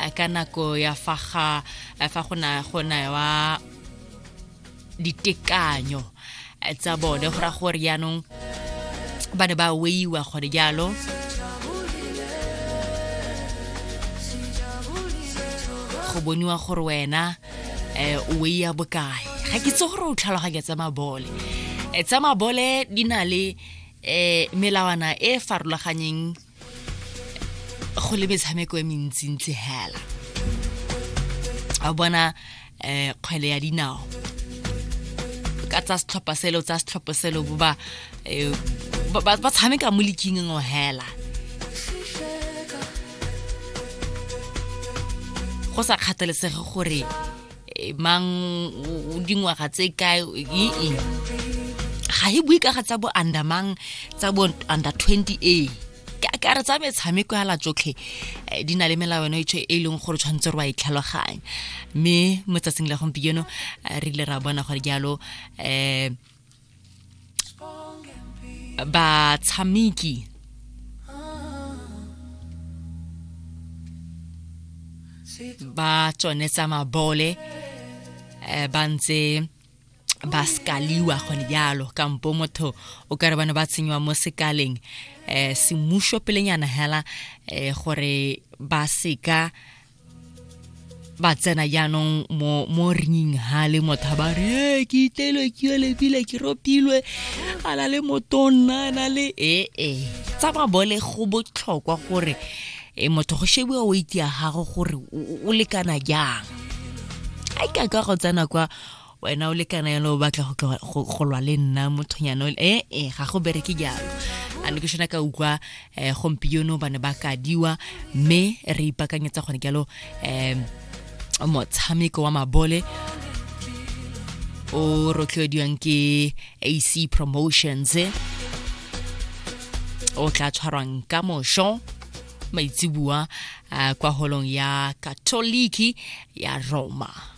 eh, ka nako ya fa ga eh, fa go na go newa ditekanyo eh, tsa bone go ra gore jaanong ba ne ba weiwa gore jalo go boniwa gore wena um o weiya bokae ga ke tse gore o tlhaloganya tsa mabole Eh, tsa mabole di na le um melawana e e farologanyeng go le metshameko e mentsintsi hela a bona um kgwele ya dinao ka tsa setlhopha selo tsa setlhopha selo bo ba eh, ba tshameka mo leking ngo hela go sa kgathalesege gore eh, mang o dingwaga tse kae ee ga e bue ka ga tsa bo under mang tsa bo under 20 a ka re tsa metshameko ya latsotlhe eh, di na le melawana e e leng gore tshwanetse re wa itlhaloganya mme mo tsatsing la gompieno eh, re ile ra bona gore jalo um batshameki ba tsone tsa mabole eh, ba ntse ba sekaliwa gone jalo kampo motho o kare bane ba tshenywa mo sekaleng um semuso pelenyana hela um gore ba seka ba tsena jaanong mo mo ringing ha le motho a ba re e ke itelwe ke yo lebile ke ropilwe a na le motonna a na le ee e tsa mabole go botlhokwa gore e motho go shebiwa weight ya gago gore o lekana jang a ka ka go tsena kwa wena o lekana yalo o batla go lwa le nna mothonyana e e ga go bereke jalo a ne ke shona ka ukwa um gompieno ba ne ba kadiwa mme re ipakanyetsa gone jalo um motshameko wa mabole o rotloediwang ke ac promotions o tla tshwarwang ka mosho maitsibua kwa holong ya katoliki ya roma